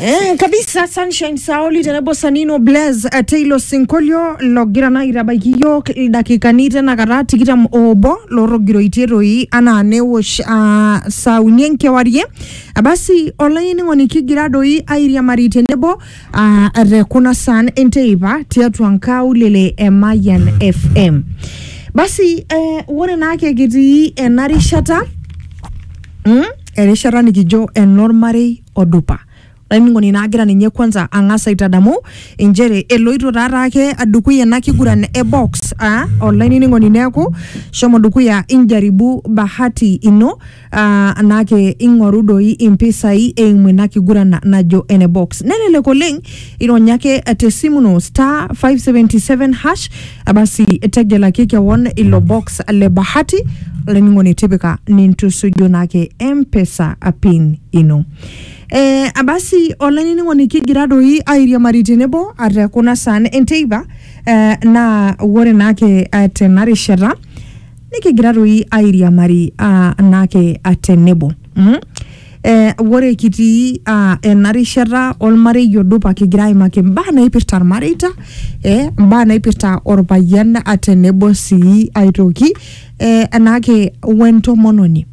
Eh, kabisa sunshine saoli tenebo sanino blaz eh, teilo sinkolio logira naa aitabaiki iyiook ildakikani tenakata tikitam oobo lorrogiroitie toi anaa newosh ah, saa uni enkewarie Ah, basi olainining'oni kigira doi airiamari tenebo ah, te kuna saan enteipa tiatua nkaulele e Mayian FM basi eh, ore naake kitii ena rishata mm? erishata nikijo enormarei odupa olainining'oni naa agira ninye kwanza ang'as aitadamu inchere eloito taata ake dukuya ena kiguran e box aa olainining'oni neeku shomo dukuya injaribu bahati ino aa anake ing'oru doi impisai eimu ina kiguran najo ene box nelelek oleng ironya ake tesimu ino star 577 hash Abasi tegelaki kewon ilo box le bahati olainining'oni tipika nintusuju naake mpesa pin ino eh, abasi olainining'oni kigira doi airiamari tenebo ate kuna saan enteipa eh, naa wore naake eh, tena rishata nikigira doi airiamari ah, naake ah, tenebo mm? Eh, ore kitii ah, ena rishata olmarei odupa kigira aimaki imbaa naipirta ilmareita eh, imbaa naipirta olpayian ah, tenebo sii aitoki eh, enaake wentomononi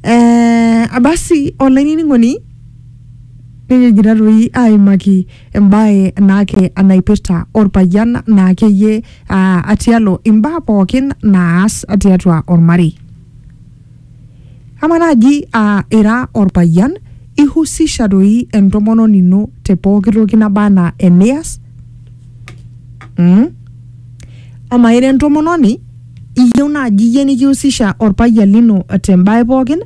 eh, basi olainining'oni nikijita toi aimaki embae naake naipirta orpayian naakeyie aa atialo imbaa pookin naas tiatua ormarei. Ama naaji aa ira orpayian ihusisha doi entomononi ino te pooki toki naba anaa enias mm? Ama ira entomononi iyieu naaji iyie nikihusisha orpayian lino tembae pookin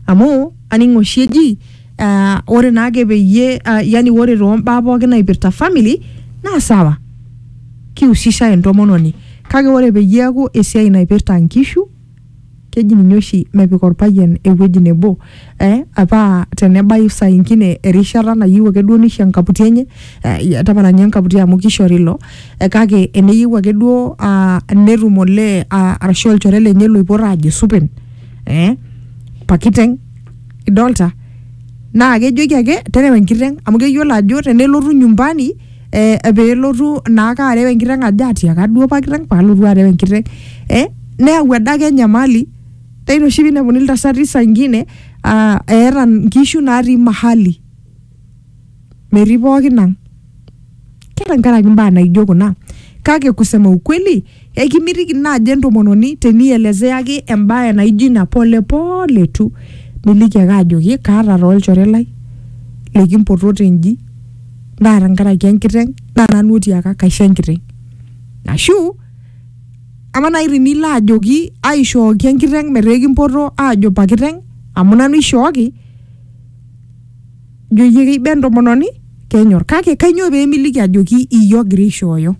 amu aning oshi eji Ah, ore naake peyie ah, yani ore toombaa pookin naipirta family naa sawa kihusisha entomononi kake ore peyie eeku esiai naipirta nkishu keji ninye oshi mepik orpayian ewueji nebo eh, paa tenebayu saa ingine erishata nayieu ake duo nisho enkaputi enye eh, tapala ninye enkaputi amu kishori ilo eh, kake eneyieu ake duo ah, netum olee ah, arashu olchore lenye loipot aajo supen eh, pakiteng' idolta naa kejoki ake terew enkiteng amu keyiolo ajo tenelotu nyumbani eh, pelotu naake arew enkiteng ajo atiaka duo apa kiteng palotu arew enkiteng eh, neyau adake enyamali naa ina oshi pinepuni iltasati saa ingine uh, eeta nkishu natii mahali. metii pookin ang ke tenkaraki mbaa naijo kuna kake kusema ukweli ekimitiki naaji entomononi tenielezeaki embae naijo ina polepole tu niliki ake ajoki kaata taa olchore lai likimpotote nji naa tenkaraki enkiteng naa nanu otiaka kaisho enkiteng ashu ama naaji tinilo ajoki aishooki enkiteng metaa ekimpoto aajo pakiteng amu nanu ishooki ijo iyie keiba entomononi kenyor kake kainyoo peemiliki ajoki iyie ogira aishooyo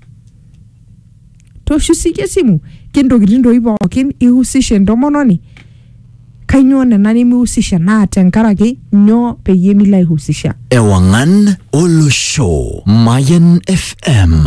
toshu siyie esimu kentokitin doi pookin ihusisha entomononi kainyoo nena nimihusisha naa tenkaraki nyoo peyie milo aihusisha Ewangan Olosho. Mayan FM.